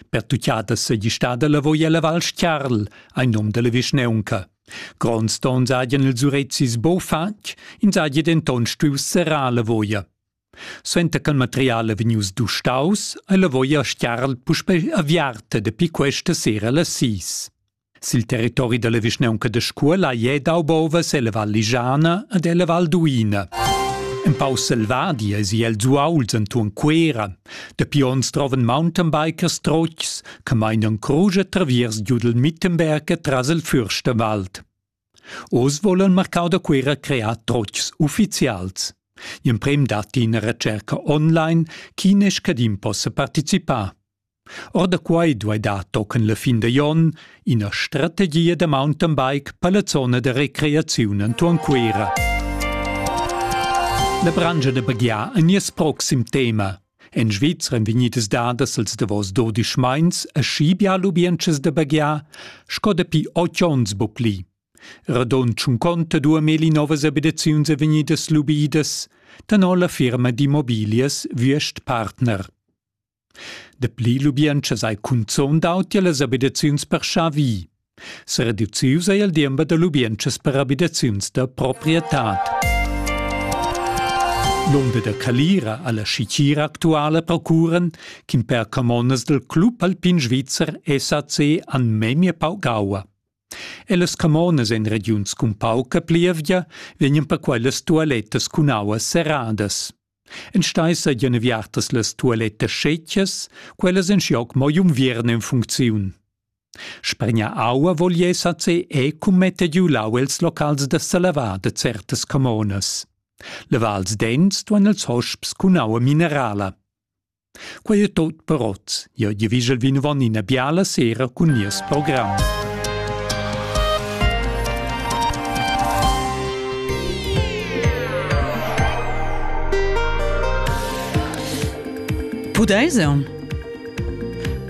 Pertuccada seigi stada lavoi ella Val Stiarl, ein num dalla vischnaunca. Gronds tons hagien ils urezis bo fatg, ins hagi denton stuiu serrar la voia. Suenter ch'il material è vegnius dustaus, ei la voia Stiarl puspei aviarta dapi questa sera las sis. Sil territori dalla vischnaunca da Scuola ei dau bovas ella Val Ligiana ed ella Val Duina. Empau selvadi eisi el zuauls entuorn Cuera. Dapi onns trovan Mountainbikers trotgs che meinan crusch e traviers giudel Mittenberg tras il Fürstenwald. Oz volan marcau da Cuera crear trotgs ufficials. Gl'emprem datti ina recerca online, chi ne scadin possa participar. Or da quai duai dar tochen la fin da jon ina strategia da mountain bike per la zona da recreaziun entuorn Cuira. La branscha da baghiar è nies proxim tema. En Svizra èn vegnidas dadas als davos dodisch meins a schibia lubientschas da baghiar sco dapi otg onns bupli. Radon tschunconta dua meli novas abitaziuns è vegnidas lubidas, tenor la firma d'immobilias Würst Partner. Dapli lubientschas ei cunzun dau tier las abitaziuns per schavi. Sereducius ei il diember da lubientschas per abitaziuns da proprietad. L'onda da calira alla schicira actuala procuran ch'in per camonas dal club alpin svizzer SAC han memia pau gaua. E las camonas en regiuns cun pauca plievgia vegnan per quellas tualettas cun aua serradas. Enstei seigien viartas las tualettas schetgas, quellas en schioc mo jumviern en funcziun. Spregna aua volies a ce e cum mette giu lau els locals da salavar de certas camonas. Le vals dents duan els hosps cun aua minerala. Quei ei tut per oz. Jeu gievigel vinavon ina biala sera cun nies program. Pudeis eu?